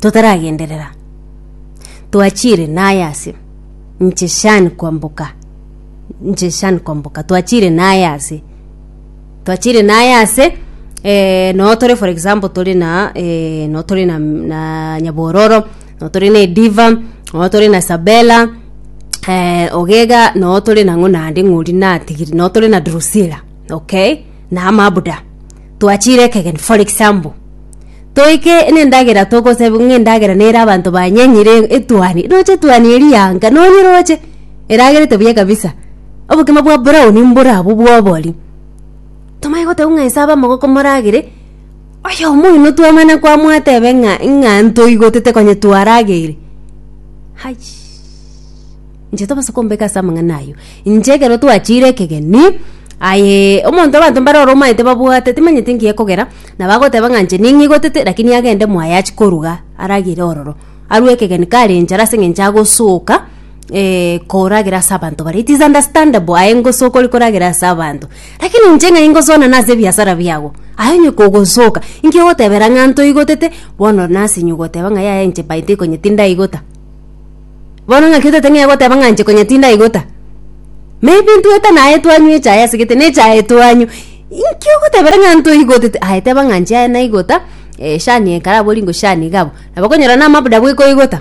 totaragenderera, twachire naye ase inche Shan kwamboka, inche Shan kwamboka twachire naye ase, twachire naye ase eh, noo tore for example tore na eh, noo tore na na Nyabororo, noo tore na Ediva, noo tore na Isabella, eh, ogega noo tore nang'o naende ng'ori natigire, noo tore na Drusila, okay? na Mabuda. twachire ekegeni for example toike na endagera togoseba ng'a endagera nere abanto banyenyire etuani roche etuani eria yanga nonye roche eragerete buya kabisa obokima bwa brown mbore abwo bwa obori tomanye goteba ng'a nyasae abe amagoko moragere oyomo oino twamana kwamwateba ng'a ng'a ntoigotete konye twaragere haichii. Inche tobasa kombeka ase amang'ana ayio. Inche ekero twachire ekegeni, aye omonto abanto mbare ore omanyete babwate timanyeti nki ekogera, nabo agoteba ng'a inche ning'e igotete lakini agende mwaye achie koruga aragere ororo. Arue ekegeni kare enchara ase eng'encho agosoka koragera ase abanto baria. It is understandable aye ngosoka ore koragera ase abanto. Lakini inche ng'a ingoswana ase ebiasara biago, aye onye kogosoka, nki ogotebera ng'a ntoigotete, bono nasinywa ogoteba ng'a yaya inche by the way konye tindaigota. Bono ng'aki otete ng'ea goteba ng'a nche konya tindaigota? Maybe ntwete naye twanywa echae asegete na echae twanywa, inki ogotebera ng'a ntoigotete? Aye teba ng'a nche aye naigota, eshani ekare abwo ringo shani iga abwo. Nabo okonyora namabuda bweka oigota,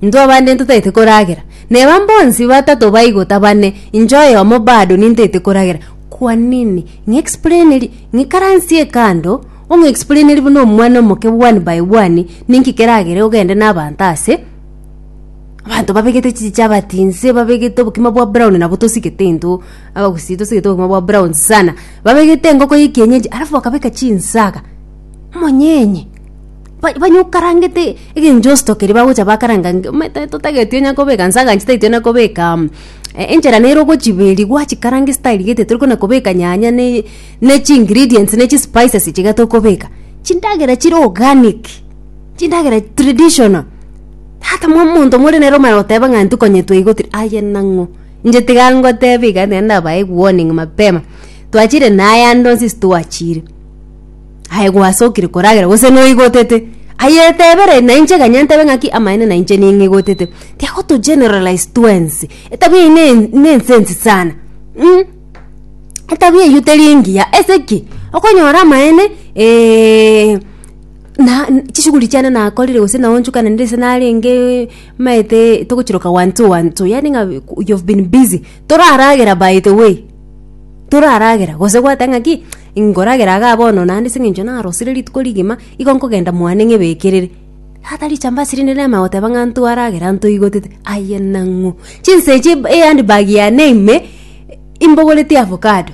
intwe abande ntotagete koragera. Neba mbonsi batato baigota bane, inche oyomo bado nintagete koragera. Kwa nini? Ng'explainerie, ng'ikaransie kando, ong'explainerie buna omwana omoke one by one, ninki keragere ogende na abanto ase. abanto babegete chichabati inse babegete obokima bwa brown nabo tosigete intwe abagusii tosigete obokima bwa brown sana babegete engoko ya ekienyeji alafu bakabeka chinsaga omonyenye ba- banya okarangete egencho ositokire bagocha bakaranga nge- omanyete totageti onya kobeka nsaga inche tageti onya kobeka mm enchera nere ogochiba eria gwachikaranga ase tarigete tori kona kobeka nyanya ne ne chi ingredients ne chispices ichiga tokobeka chindagera chire organic. chindagera traditional hata mwa monto more nere omara goteba ng'a ntukonyetwe igo tiri aye nang'o inche tiga ngoteba iga nere ndabae warning mapema twachire na ayande onsi stwachire aye gwasokire koragera gose noigotete aye tebere na inche ganya ntebe ng'aki amaene na inche ning'igotete tiga goto generalize twensi etabia eyio ne ne ensense sana mh etabia eyio teri engiya ase ki okonyora amaene. na chishughuli chiane nakorire gose naonchokana nere ase narenge maete togochiroka one two one two yaani ng'a you've been busy toraragera by the way toraragera gose gwateba ng'a ki nkoragera igaa bono naende ase eng'encho narosire rituko rigima igo nkogenda mwane ng'ebekerere tata richambasi rinde nerema goteba ng'a ntwaragere anto igotete aye nang'u chinsa echi ehandbag yane ime imbogoretie avocado.